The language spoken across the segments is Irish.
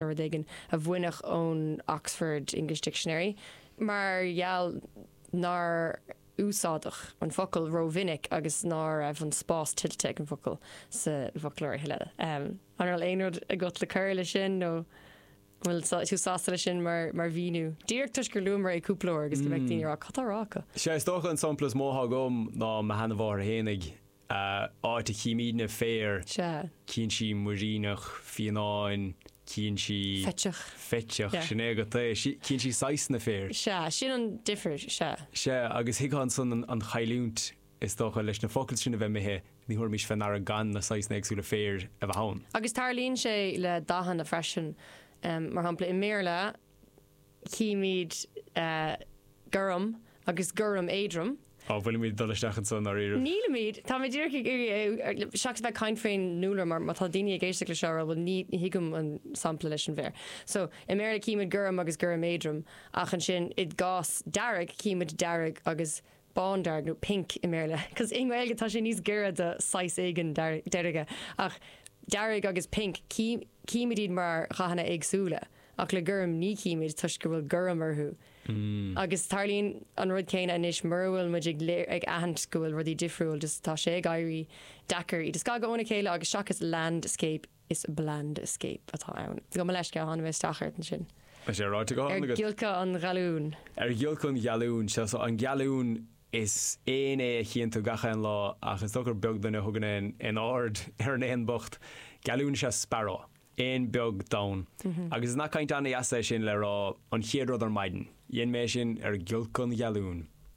rud éigin a baineadh ón Oxford English Dictionary mar gheall nár úsáideadh an focal rómhinic agus ná raibh an spás tuillte ag an bhfocal sa bhfoclóir a thuilleadh. An bhfuil aon rud agat le cur leis sin nó an bhfuil tú sásta leis sin mar mhíniú? Díreach toisc gur luamar é cúpla uair agus go mbeadh daoine ag rá 'cad atá á rá acu? Sea, is dócha an sampla is mó atá agam ná mo sheana-mháthair fhéinig. A áit a chímid na féir. Sea. Cíonn sí muiríneach, fíonáin, cíonn sí. Fiteach. Fiteach, sin é agat é. Cíonn sí saghasanna féir. Sea, sin an difir, sea. Sea, agus thuigfeá ansan an chailliúint, is dócha, leis na focail sin a bheith imithe, ní thabharfaimis fé ndeara gan na saghasanna éagsúla féir a bheith ann. Agus tarlaíonn sé le dathanna freisin, mar shampla i mBéarla, chímid gorm agus gorm éadrom. Cá bhfuilimid ag dul isteach anseo i ndáiríribh? nílimid, táimid díreach ag iarraidh, seachas a bheith ag caint faoin ndúlra mar má tá daoine ag éisteacht leis seo ag rá bhuel ní thuigim an sampla leis an bhféar so i mBéarla címid gorm agus gorm éadrom ach ansin i gcás dearg címid dearg agus bándearg nó pink i mBéarla, cos i nGaeilge tá sé níos giorra do saghas éigin deirge, ach dearg agus pink, címid iad mar dhathanna éagsúla, ach le gorm, ní chímid toisc go bhfuil gorm orthu. Agus tarlaíonn an rud céanna anois, mura bhfuil muid ag aithint go bhfuil rudaí difriúil, just tá sé ag éirí deacair iad a scagadh óna chéile agus seachas landscape, Is 'blandscape' atá ann. Gabh mo leithscéal, tháinig mé isteach ort ansin. Tá sé ráite go hiomlán agat. Ar ghiolcadh an ghealúin. Ar ghiolcadh an ghealúin. Sea, so, an gealún, is éan é a chíonn tú gach aon lá ach is dócha gur beag duine a thugann aon aird ar an éan bocht. Gealún is ea sparrow. Éan beag donn. Agus is nath cainte an-deas é sin le rá an chéad rud ar maidin. Dhein mé é sin ar ghiolcadh an ghealúin.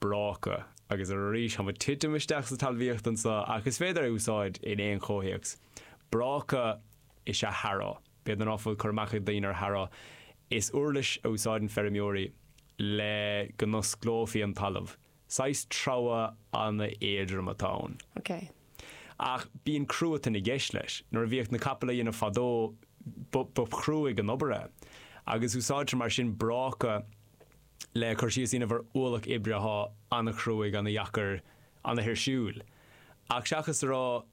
bráca, agus arís táim ag titim isteach sa talmhaíocht anseo, ach is féidir é a úsáid in aon chomhthéacs. Bráca is ea harrow. B'fhéidir ná fuil cur amach ag daoine ar harrow. Is uirlis a úsáideann feirmeoirí le go n-osclófaí an talamh. Saghas treabhadh an-éadrom atá ann. OK. Ach bíonn cruatan i gceist leis. Nuair a bhíodh na capaill á dhéanamh fadó, ba chruaidh an obair é. Agus úsáidtear mar sin bráca. le cur síos a dhéanamh ar ualach oibre athá ana-chruaidh, ana-dheacair, ana-thuirsiúil. Ach seachas a rá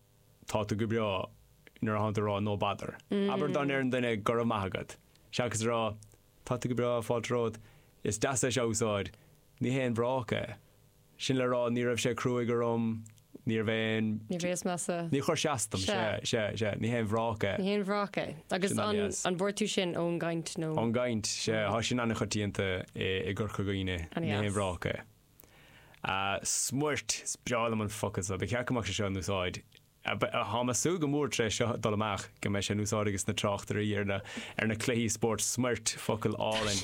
Tá tú go breá, nuair athá tú a rá No bother. Abair dá ndéarfadh duine Go raibh maith agat. Seachas a rá Tá tú go breá, fáilte romhat, is deas é seo a úsáid, ní haon bhráca é. Sin le rá, ní raibh sé cruaidh orm, níorbh aon. Ní bhíos measa. Ní chuir sé as dom, sea, sea, sea, ní haon bhráca é. Ní haon bhráca é. Agus an bhfuair tú sin ón gcaint nó? Ón gcaint, sea, thá sin an-choitianta i gCorca Dhuibhne, ní haon bhráca é. Smuirt, is breá liom an focal seo, ba cheart go mbeadh sé seo in úsáid, thá mé ag súil go mór tar éis seo dul amach go mbeidh sé in úsáid ages na tráchtairí ar na cluichí spóirt, smuirt, focal álainn.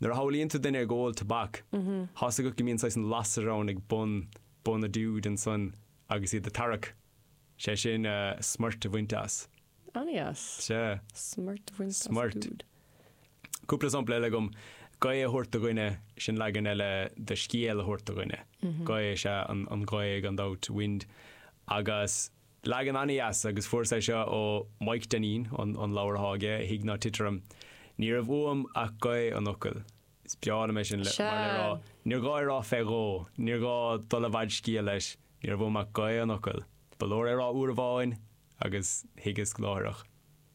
Nuair a shamhlaíonn tú duine ag ól tobac, tá's agat go mbíonn saghas an lasair ann ag bun, bun a dúid ansan agus iad a' tarrac, sé sin, eh, smoirt a bhaint as. Ana-dheas. Sea. Smoirt a bhaint as a Smoirt. dúid. Cúpla sampla eile agam, Gaoth a thabhairt do dhuine, sin leagan eile de scéal a thabhairt do dhuine. Gaoth is ea an, an ghaoth gan dabht, wind, agus. Leagan ana-dheas, agus fuaireas é seo ó Maidhc Dainín, an leabhar athá aige, A Thig Ná Tit Orm. Ní raibh uaim ach gaoth an fhocail. Is breá liom é sin, mar le rá, níor ghá é rá fé dhó, níor ghá dul i bhfad scéil leis, ní raibh uaim ach gaoth an fhocail. Ba leor é rá uair amháin, agus thuigeas láithreach.